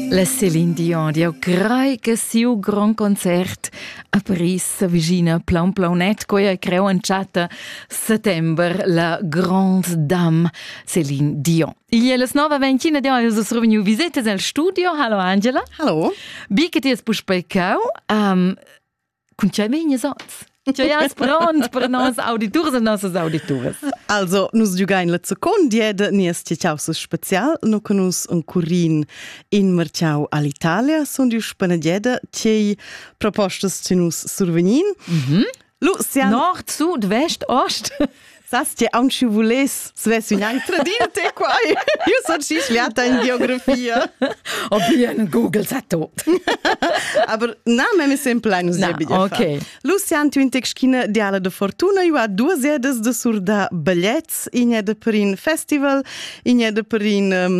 La Celine Dion di ho crai che siu grond concert a Paris s'avvicina plaun plaunet, quei ei creu entschatta settember la Grande Dame Celine Dion. Igl è las 9.21 Dion, e es reveniu visitas al studio. Hallo Angela. Hallo. Bi che ti es puspei cau. Um, Cun tgei meinias oz? Tgei as pront per nos auditurs e nossas audituras? Also, nus giugain la zocon diede, nies tiaus special, no con nus un curin in marciau all'Italia, sun diu spanadiede, tgei propostas ti nus survegnin. Mhm. Lucian. Nord, sud, vest, ost. Sas ti aunc schi vuless svess ün anc tradir te quai? Io so schi schliata in geografia. O bien Google sa tot. Aber na, me mi sem plan usebi. Okay. Lucian Tüntexkine diala de fortuna io a duas edes de surda biglets in e de per in festival, in e de per in um,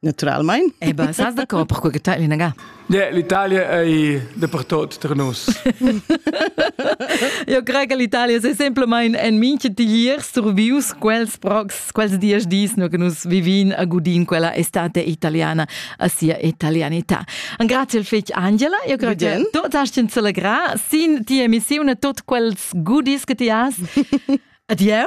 Naturalmein. Eh ben, sas d'accord pourquoi que l'inaga? L'Italia ei dapertot tra nus. Io crei che l'Italia è semplicemente en minche tiglier survius quels prox, quels dies dis che nus vivin a gudin quella estate italiana a sia italianità. Un grazie al fetg Angela, io crei che tu hast in celebra sin ti emissione tot quels goodies che ti has. Adieu.